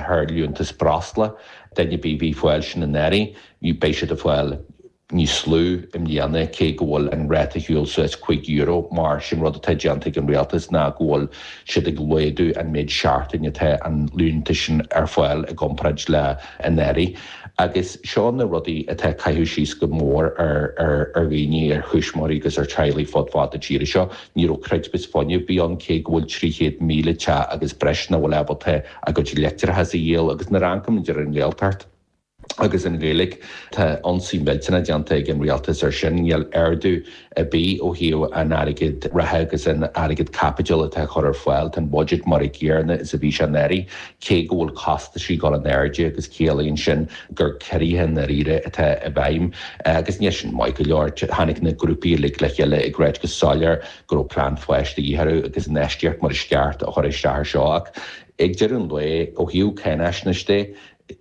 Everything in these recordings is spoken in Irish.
thar liúntas breosla, duine ar bith bhí fáil sin anuraidh, bhí, beidh siad ag fáil níos lú i mbliana cé go bhfuil an ráta ag gabháil suas cúig euro mar sin rud atá déanta ag an Rialtas ná go bhfuil siad ag laghdú an méid seachtain atá an liúntas sin ar fáil i gcomparáid le anuraidh agus seo na rudaí atá cuir síos go mór ar ar dhaoine, ar thuismitheoirí agus ar teaghlaigh fud fad na tíre seo. Níl aon chreidmheas fuinnimh ar bith ann cé go bhfuil 300,000 teach agus breis ná bhfuil ábalta a gcuid leictreachas a dhíol agus nuair a amharcann muid ar an nGaeltacht agus an Ghaeilge tá ionsaí millteanach déanta ag an Rialtas ar sin. Níl ardú ar bith ó thaobh an airgead reatha agus an airgead caipitil atá a chur ar fáil. Tá an budget mar a gcéarna is a bhí sé anuraidh cé go bhfuil costaisí ag gabháil in airde agus ciallaíonn sin gur ciorruithe i ndairíre atá i bhfeidhm agus níl sin maith go leor. Tháinig na grúpaí uilig le chéile ag ráit go soiléir go go raibh plean fáis de dhith orthu agus infheistíocht mar is ceart á chur isteach ar seo ach ag deireadh an lae, ó thaobh cáináisneis de,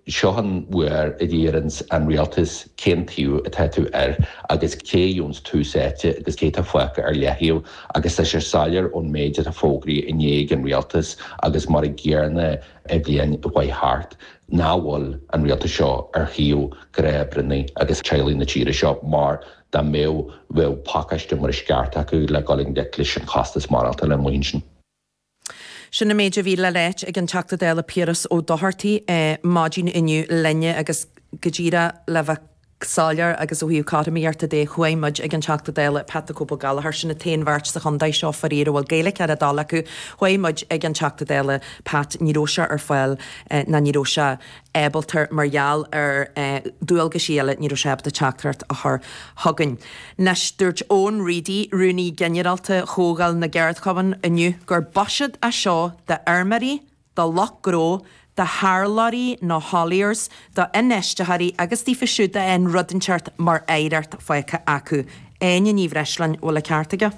seo an uair a deireann an Rialtas cén taobh atá tú air agus cé gheobhans tús áite agus cé tá fágtha ar leathtaobh agus tá sé soiléir ón méid atá fógraithe inné ag an Rialtas agus mar a gcéarna an bhliain a chuaigh thart nach bhfuil an Rialtas seo ar thaobh ghnáthoibrithe agus teaghlaigh na tíre seo mar Dá mbeadh, bheadh pacáiste mar is ceart acu le dhul i ngleic leis an chostas maireachtála. Bhuel, sin. Sin an méid a bhí le ráit ag an Teachta Dála Piaras Ó Dochartaigh maidin inniu linne agus go díreach le bheith soiléir agus ó thaobh cothromaíochta de chuaigh muid ag an Teachta Dála Pat the Cope Gallagher, sin an t-aon bheirt sa chontae seo faraor a bhfuil Gaeilge ar a dtoil acu, chuaigh muid ag an Teachta Dála Pat ní raibh sé ar fáil ná ní raibh sé ábalta mar gheall ar dualgaisí eile ní raibh sé ábalta teachtaireacht a chur chugainn. Anois dúirt Eoin Reidy, Rúnaí Ginearálta Chomhdháil na gCeardchumann inniu gur buiséad é seo d'fheirmeoirí, do lucht gnó, do tharlóirí nó hauliers, do infheisteoirí agus daofa siúd a raibh rud inteacht mar oidhreacht faighte acu. Áine Ní Bhreisleáin, bhfuil a ceart aige?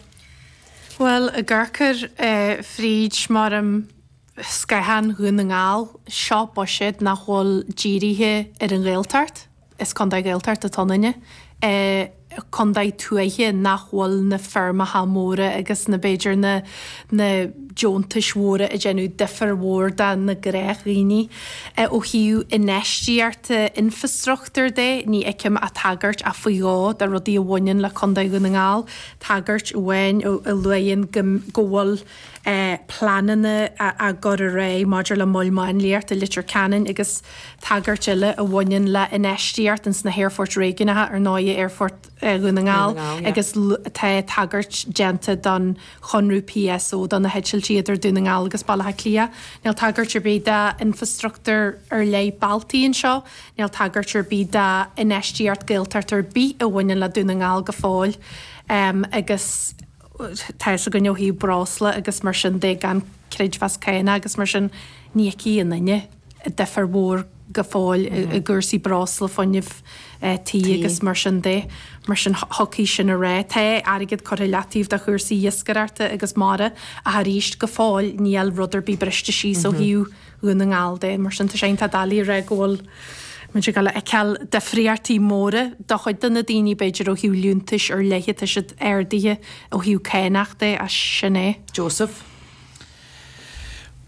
Bhuel, a gcarcair, fríd m'orm spéaclaí Dhún na nGall, Seo buiséad nach bhfuil dírithe ar an Ghaeltacht, is contae Gaeltachta atá ionainne, contae tuaithe nach bhfuil na feirmeacha móra agus na b'fhéidir na na deontais mhóra ag déanamh difear mhór dá na gnáthdhaoine. Ó thaobh infheistíochta infreastruchtúir de, ní fheicim ach tagairt, ach faoi dhó, do rudaí a bhaineann le contae Dhún na nGall, tagairt amháin a luann go go bhfuil. pleananna á gcur ar aghaidh maidir le mol máinliacht i Leitir Ceanainn agus tagairt eile a bhaineann le infheistíocht ins na haerfoirt réigiúnacha, ar ndóigh Aerfort Dhún na nGall, agus tá tagairt déanta don chonradh PSO do na heitiltí idir Dún na nGall agus Baile Átha Cliath. Níl tagairt ar bith do infrastruchtúr ar leith bealtaí anseo. Níl tagairt ar bith do infheistíocht Gaeltacht ar bith a bhaineann le Dún na nGall go fóill agus. tá fhios againn ó thaobh breosla agus mar sin de gan creidmheas céanna agus mar sin ní fheicfidh an duine difir mhór go fóill i gcúrsaí breosla, fuinnimh tí agus mar sin de. Mar sin thiocfadh sin a rá. Tá airgead curtha i leataoibh do chúrsaí iascaireachta agus mara ach arís go fóill níl rud ar bith briste síos ó thaobh, Dhún na nGall de. Mar sin tá sé iontach doiligh a rá go bhfuil muid ag dul a fheiceáil difríochtaí móra do chuid de na daoine, b'fhéidir ó thaobh liúntais ar leith, tá siad ardaithe ó thaobh cánach de ach sin é. Joseph,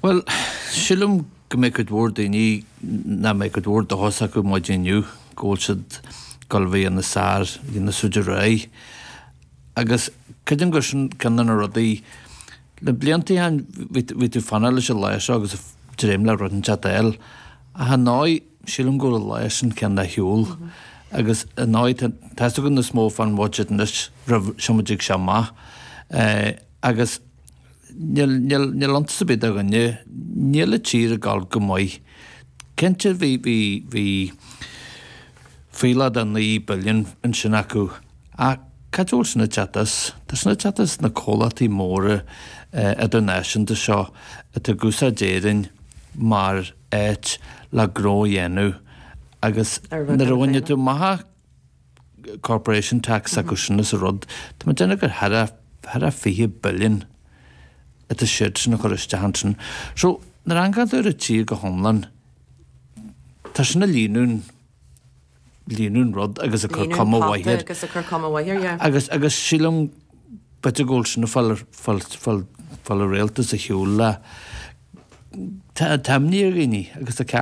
Bhuel, sílim go mbeidh cuid mhór daoine nach mbeidh cuid mhór dóchas acu maidin inniu go bhfuil siad ag dul a bheith níos fearr, níos faide ar aghaidh agus creidim gur sin ceann de na rudaí, Le blianta chineál bhí tú ag fanacht leis an lá seo agus ag dréim le rud inteacht a fháil. Ach ar ndóigh, sílim go bhfuil an lá sin cineál ar shiúl. Agus ar ndóigh, tá fhios againn níos mó fán mbudget anois roimh sul má dtig sé amach. Agus níl iontas ar bith do dhuine, níl an tír ag gabháil go maith. Cinnte bhí, bhí, bhí, Fuílleach de 9 billiún ansin acu. Ach cad é a bhfuil sin ag teacht as? Tá sin ag teacht as na comhlachtaí móra idirnáisiúnta seo atá ag úsáid Éirinn mar áit le gnó a dhéanamh agus nuair a bhainfidh tú amach corporation tax acu sin as an rud, tá mé ag déanamh gur thar a 20 billiún atá siadsan ag cur isteach ansin. So, nuair a amharcann tú ar an tír go hiomlán, Tá sin ag líonadh an, líonadh an rud agus ag cur cuma mhaith air. Líonadh an phota agus ag cur cuma mhaith air, yeah. Agus, agus sílim, b'fhéidir go bhfuil sin ag fáil ar, fáil, fáil, fáil an Rialtas ar shiúl le, tá, tá imní ar dhaoine agus tá ceart.